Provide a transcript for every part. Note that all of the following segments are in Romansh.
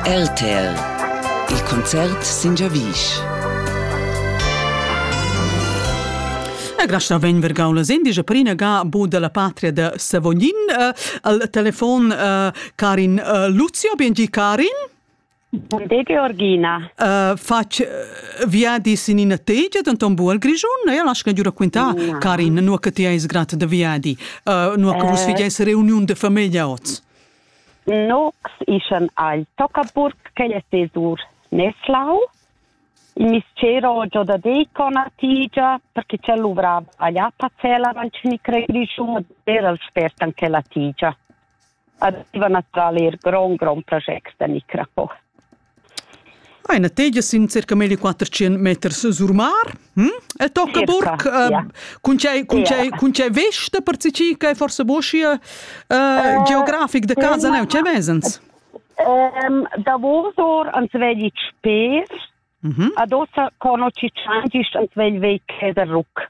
LTL Il concert sin giavisch. E grasta vegn vergau la sendigia per ina ga bu dalla patria de Savognin. Uh, al telefon uh, Karin uh, Luzio, bengi Karin. De Georgina. Uh, fac uh, viadis in ina tegia denton bu al Grischun, e lasca giura quintar, no. Karin, nu che ti eis grat de viadi, uh, nu che vus eh. figeis reuniun de famiglia oz. Nox ischan agl Toccaburg ch'ei ei sesur Neslau. Il mistgero giò da Decon a Tigia, perché ch'el luvrava agl Appazell avant ch'vgni crei Grischun ed era el spert anche la Tigia. Aveva naturalmein er grond, grond project da micro. Hai ina tegia sin circa meglio quatter tschient meters sur mar. Hm? El tocca burc uh, yeah. cun tgei cun tgei yeah. cun tgei vesta per tgi che forse boschi uh, uh, geografic de casa um, neu tgei vesens? Um, davosor ans vegli spes. Mm -hmm. Adossa conosci tschangist ans vegli vei ceder ruc.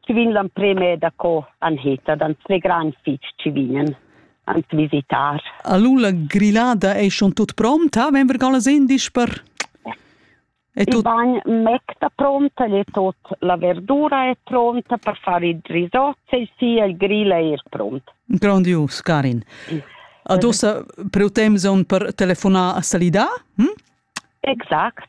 Ci vegn l'emprem è da co an heta, d'ans ve gran fitg ci vignen ans visitar. Allora la grillada è schon tut pronta, wenn wir alles indisch per... E tut... Il bagn mec da pronta, è tot la verdura è pronta per fare il risotto e sì, il grill è er pront. Grandios, Karin. Adossa preutem zon per telefonare a salidar? Hm? Exact.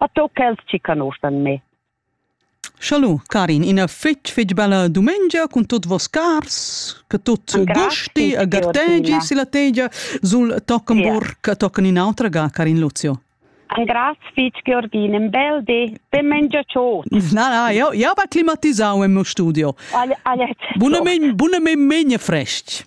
Otto quels chi conoscan me. Schalu, Karin, ina fitg fitg bella dumengia cun tot vos cars, che tot gusti e gartegi silla tegia sul Tockenburg e tochen in autra ga, Karin Luzio. Ein graz fitg Georgin, ein bel di, ben mengiaciot. Na, na, io, io va climatisau in mio studio. Alle, alle, Buna men, buna men, men frest.